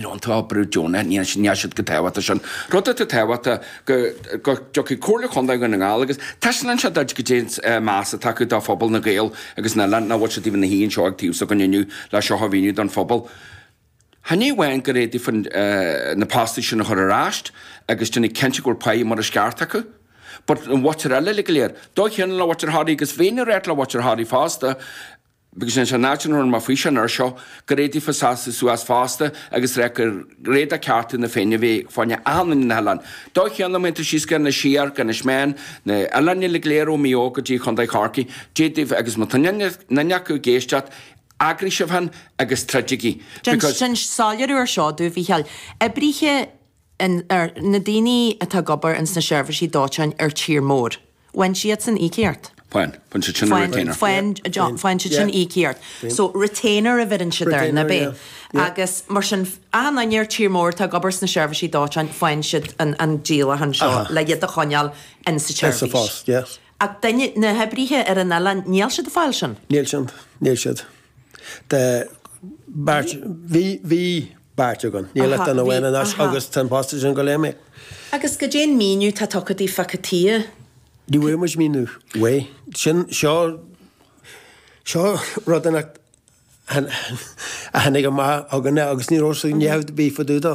Tá obair deonaithe, níl siad go tábhachtach sin. Rud atá tábhachtach go dtiocfaidh Comhairle Chontae Dhún na nGall agus taispeánann siad duit goidé an meas atá acu do phobal na Gaeil agus an oileáin, nach bhfuil siad taobh na haon seo ag tábla againn inniu le seo a mhíniú don phobal. Ní amháin gur fhéadfaí na postaí sin a chur ar ais agus déanamh cinnte go bhfuil pá mar is ceart acu, but an mhuintir eile uilig go léir, dóigh chéanna le muintir Thoraí agus bheinn ag rá le muintir Thoraí fosta, Because sin an áit an run má faoiseamh an uair seo, gur fhéad daofa seasamh suas fosta agus ráit gur fhéad cearta na Féinne a bheith fá choinne achan duine ar na hoileáin. Dóigh chéanna má théann tú síos go, nó siar go Inis Meáin, na oileáin uilig léir ó Mhaigh Eo go dtí Chontae Chorcaí, d'fhéad daoibh agus má tá aon acu ag éisteacht, eagraigh sibh féin agus troidigí. Because. Déan soiléiriú air seo domh a Mhícheáil. Oibrithe in, ar, na daoine atá ag obair ins na seirbhísí dóiteáin ar tír mór. Faigheann siadsan íocaíocht? Faigheann. Faigheann siad sin an retainer. Faigheann. Faigheann. Faigheann siad sin íocaíocht. So retainer a bheireann siad air, nab é? Agus mar sin, achan duine ar tír mór atá ag obair sna seirbhísí dóiteáin, faigheann siad an an díolachán seo le iad a choinneáil insa tseirbhís. Ach duine, na hoibrithe ar an oileán, níl siad ag fáil sin? Níl siad. Níl siad. de beirt, bhí, bhí beirt againn, níl ach duine amháin anois agus tá an posta sin ag gabháil a imeacht. Agus cad é an míniú atá tugtha daoibh fá cad chuige? Ní bhfuair muid míniú ar bith. Sin, seo, seo rud a tháinig amach chugainne agus ní raibh sé, ní raibh rud ar bith fá dtaobh dó.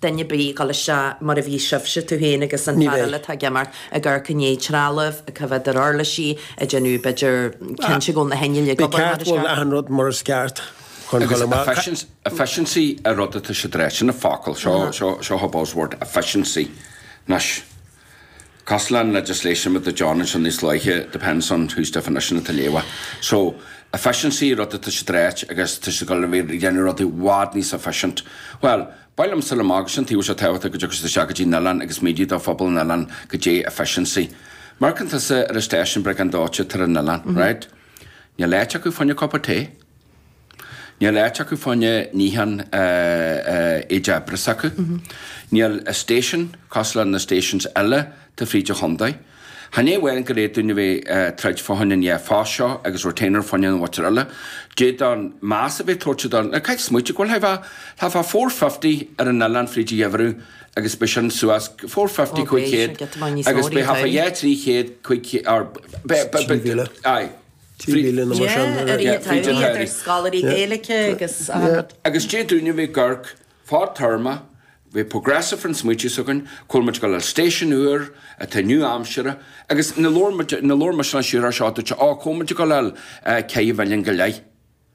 duine a bheith ag dul isteach mar a bhí sibhse, tú féin agus an fear eile atá ag imeacht, ag amharc i ndiaidh trealaimh, ag coimhéad ar uirlisí, ag déanamh, b'fhéidir, cinnte go bhfuil na hinnill ag obair mar is ceart. Bhí ceart, bhuel, achan rud mar is ceart chun dul amach. Efficiency an rud atá siad a ráit, sin an focal, seo an buzzword, efficiency. Cosúil leis an legislation mar a dúirt John ansin níos luaithe depends on whose definition atá tú a léamh. So, efficiency rud atá siad a ráit agus tá siad ag gabháil a bheith ag déanamh rudaí i bhfad níos efficient. Bhuel, ba liomsa le má go sin tá sé tábhachtach go dtiocfadh siad isteach go dtí an oileán agus míniú do phobal an oileáin goidé efficiency. Amharcann tusa ar an station briogáid dóiteáin atá ar an oileán, right? Níl áit acu fá choinne cupa tae. Níl áit acu fá choinne níochán, níl leithreas acu. Níl station cosúil le na stations eile atá fríd an chondae. Chan é amháin gur fhéad dúinn a bheith ag troid fá choinne na postaí seo agus retainer fá choinne na muintir eile. D'fhéadfá meas a bheith tabhairt do, na caithfidh tú smaoitiú go bhfuil thart fá, thart fá four fifty ar an oileán fríd an gheimhreadh agus beidh sin suas four fifty cúig chéad agus beidh thart fá yeah trí chéad cúig chéad or beidh beidh beidh trí mhíle aye. Fríd linn mar sin. Yeah, ar iad ar iad ar scoláirí Gaeilge agus. Agus d'fhéad dúinn a bheith ag amharc fadtéarma, a bheith progressive an smaoitiú s'againn, go bhfuil muid ag gabháil a fháil station úr atá nua-aimseartha agus ina labhair muid, ina labhair mise leis siar ar seo duitse, á, go bhfuil muid ag gabháil a chaitheamh milliún go leith.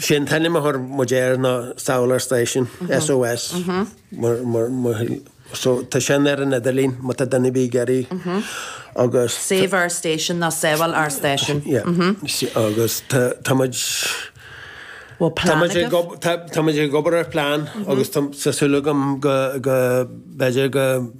Sé an t-ainm a thur muid air ná Save Our Station, SOS. So tá sin ar an idirlín má tá duine ar bith ag iarraidh agus... Save Our Station nó Sábháil Ár Stáisiún. Yeah. Agus tá tá muid... Bhfuil plean agat? Tá muid ag ob- tá- tá muid ag obair ar phlean agus tá- tá súil agam go- go- b'fhéidir go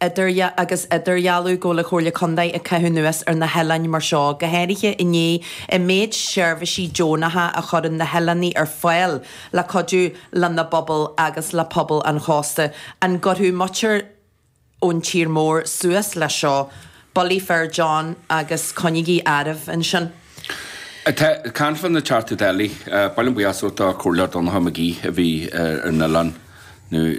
idirdhealú agus idirdhealú go bhfuil an Chomhairle Contae ag caitheamh anuas ar na hoileáin mar seo, go háirithe i ndiaidh an méid seirbhísí deonacha a chuireann na hoileánaigh ar fáil le cuidiú lena bpobal agus le pobal an chósta. An gcuirfeadh muintir ón tír mór suas leis seo? Bulaí fir, John, agus coinnígí oraibh ansin. Tá Canfinn ag teacht go Deilí. Ba mhaith liom buíochas a thabhairt do Chomhairleoir Donncha McGee a bhí ar an oileán nuair.